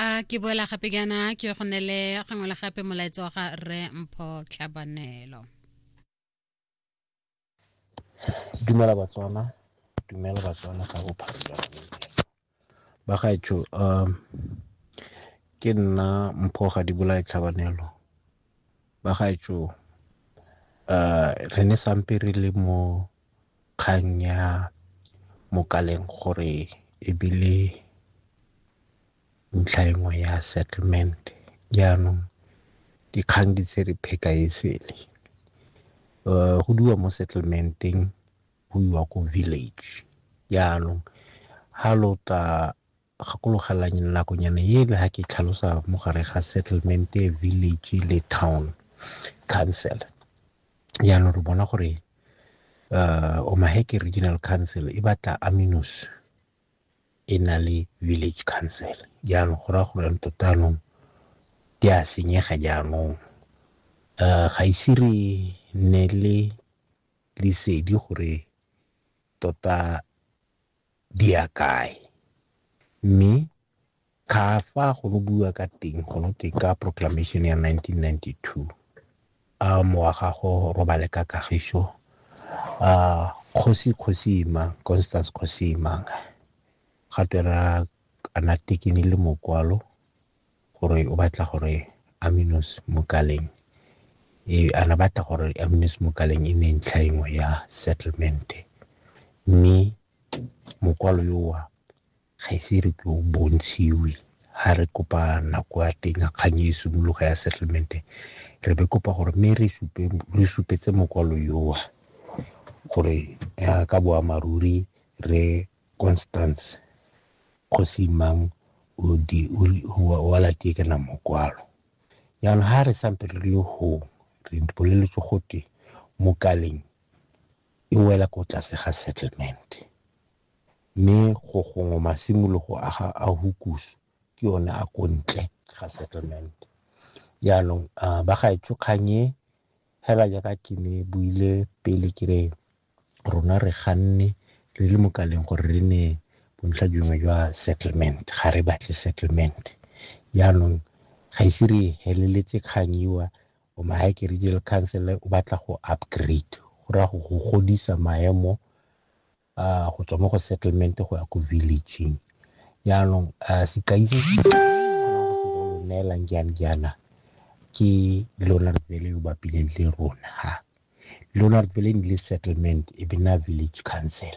a ke boela gape jaana ke go nele gangwe le gape molaetsa wa ga rre mpho tlhabanelo dumela batswana dumela batswana ka bophara jwa ba gaetsho um ke nna mpho ga di bolae tlhabanelo ba gaetsho um re ne sampe re le mo kgang ya Mokaleng gore ebile ntlha e nngwe ya settlement jaanong dikgang di tse re pheka e sele go diwa mo settlementeng go iwa ko village jaanong ha lo tla Gakologelwang nakonyana eno ha ke tlhalosa mo gare ga settlement village le town council jaanong re bona gore uh, omaheke regional council e batla aminos e na le village council jaanong go raya gore tota anong di a senyega jaanong um ga ise re nne le lesedi gore tota di ya kae. Mme ga fa go no buiwa ka teng go no twe ka proclamation ya nineteen ninety-two a mowa ga go robale ka kagiso a kgosi kgosima Constance kgosima ga twe ra ana tekene le mokwalo gore o batla gore aminos mokaleng e ana batla gore aminos mokaleng e nne ntlha engwe ya settlement mme mokwalo yowa ga ise re ke o bontshiwe ha re kopa nako ya teng ya kgang e simologa ya settlement re be kopa gore mme re supe re supetse mokwalo yowa gore ka boammaaruri re Constance kgosi mang o di wa la tie kana mokwalo yana ha re sampe re le ho re bolele tso gote mo kaleng e wela ko tlase ga settlement me go gongwe masimolo go aga a hukus ke yone a ko ntle ga settlement yana ba ga e tso kganye hela ya ka ke ne buile pele ke re rona re ganne re le mo kaleng gore re ne bontlha dingwe jwa settlement ga re batle settlement jaanong ga ise re heleletse kgang iwa o mahake regional council o batla go upgrade go raya go godisa maemo go tswa mo go settlement go ya ko villageng jaanong a sekai se se neelang jang jaana ke leonard bele yo bapileng le rona ha leonard bele le settlement e be na village council